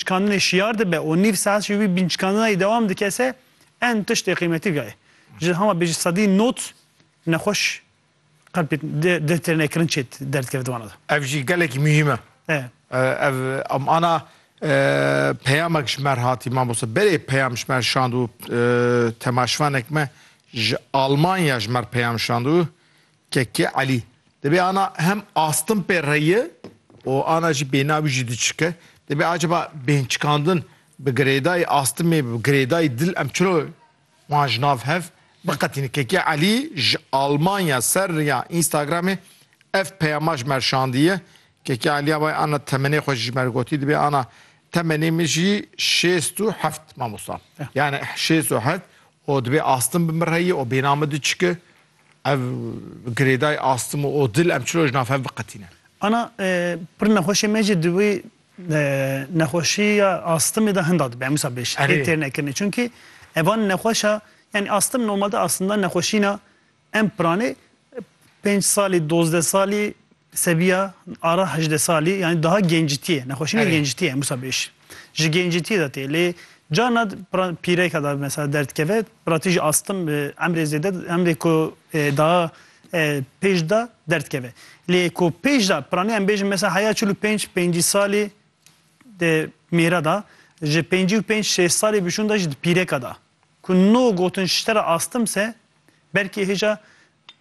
Çikandinê şiyar dibe û nîv saet jî wî bînçikandinayî dewam dike se en tiştê qîmetî gaye. Ji hama bêjî sedî not nexweş qelpê dê tê nekirin çê derd keve di wana de. Ev jî gelekî muhîm e. Ev em ana peyamek ji me re hatî mamoste. Berê peyam ji me re şand û temaşivanek me ji Almanya ji me re peyam şand û Kekê Elî dibê ana hem astin pê re ye û ana jî bêhna wî jî diçike. Dibê acaba bêhnçikandin bi girêdayî astimê, bi girêdayî dil em çiro wan ji nav hev biqetînin. Kekê Elî ji Almanya ser riya Instagramê ev peyama ji me re şandiye. Kekê Elî avayê ana temenê xwe jî ji me re gotî dibê ana temenê min jî şêst û heft mamosta. Yani şêst û heft û dibê astin bi min re ye û bêhna min diçike. Ev girêdayê astim û o dil em çilo ji nav hev biqetîne. Ana pir nexweşê me jî di wî nexweşiya astimê de hinda dibe em wisa bê şî tê têr nekirinê çunkî evan nexweşa yanî astim normalde aslında nexweşîna em piranê pênc salî dozdeh salî Sebiya ara hejdeh salî yanî daha gencitiyê, nexweşî ne gencitiyê ye Musa bêj. Ji gencitiyê de tê lê carna pîreke de mesela derdikeve piratî jî astim bi emrê zêde emrê ku daha pêj de derdikeve. Lê ku pêj de piranî em bêjin mesela heya çil û pênc pêncî salî di mêre de ji pêncî û pênc şêst salî bişûn de jî di pîreke de ku no gotin ji te re astim se belkî hêja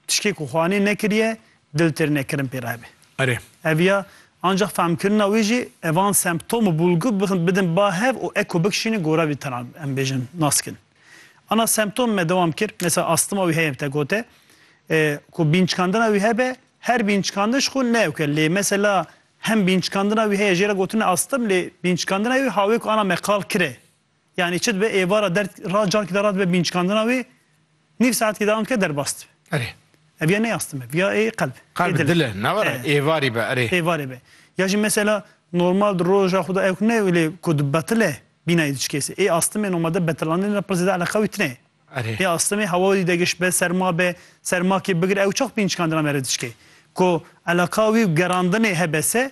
Tişkê ku xwe anê nekiriye, dil têr nekirin pê re hebe. Erê. Ev ya, ancax fehmkirina wê jî e van semptom û bulgu bixin bidin ba hev û eko bikişînin ku ora vî tena em bêjin naskin. Ana semptom me dewam kir, mesela astima wî heye bi te gote, ku bînçikandina wî hebe, her bînçikandin ji xwe ne yok e, lê mesela hem bînçikandina wî heye jê re gotin e astim lê bînçikandina wî hawê ku ana me qal kir e, Yanî çi dibe êvara derd ra carkî de ra dibe bîncikandina wê nîv saetkî de anke derbas dibe. Erê. Ev ya nê astime bi ya ê qelb. Qelb dil e ne were êvarî be erê. Êvarê be. Ya jî mesela normal di roja xwe de ewk ne wlê ku di betile bînayê diçikêse. Ê astimê nomade betilandinê de pir zêde eleqa wî tine ye. Erê. Ê astimê hewa wî de giş be serma be sermakê bigir ew çax bîncikandina me re diçike. Ku eleqa wî û gerandinê hebese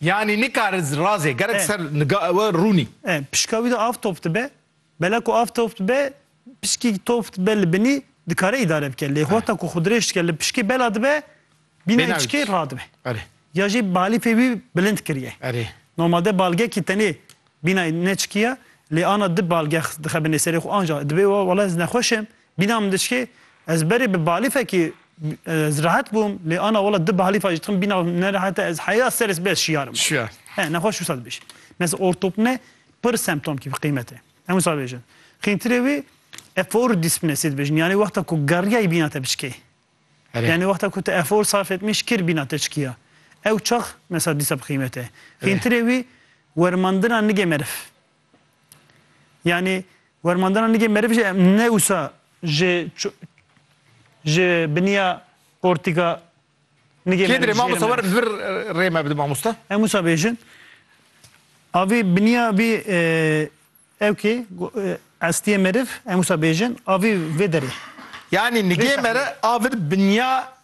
Yanî nikare razê gerek ser niga ewe rûnî. E, pişka wî de av top dibe. Bela ku av top dibe, pişkî top dibe li binî dikare îdare bike. Lê hota ku xwe dirêj dike li pişkê bela dibe, bîna Bêna içikê wî. radibe. Erê. Ya jî balîfê wî bilind kiriye. Erê. Normalde balgekî tenê bînayê ne çikî ye, lê ana di balgex dixe binê serê xwe anca dibê wa wele ez nexweş im. Bîna min diçikê, ez berê bi balîfekî ez rehet bûm, lê ana wela di balîfa jî dixim bîna min nerehet e, ez heya ser spî ez şiyarim. Şiyar. He, nexweş wisa dibêje. Mesela ortopne pir semptomkî bi qîmet e. Em wisa dibêjin. Xîntirê wî efor dîspîne sê dibêjin. Yanî wexta ku geriyayî bîna te biçikê. Erê. Yanî wexta ku tu efor sarf etmî şikir bîna te çikiya. Ew çax mesela dîsa bi qîmet e. Xîntirê wî wermandina nigê meriv. Yani wermandana nigê meriv jî em ne wisa ji ji biniya portika nigê meriv jî mamosta wer vir rê me bide mamosta. Em wisa bêjin avî biniya vî ew kê estiyê meriv em wisa bêjin avî vê derê. Yani nigê mere avir biniya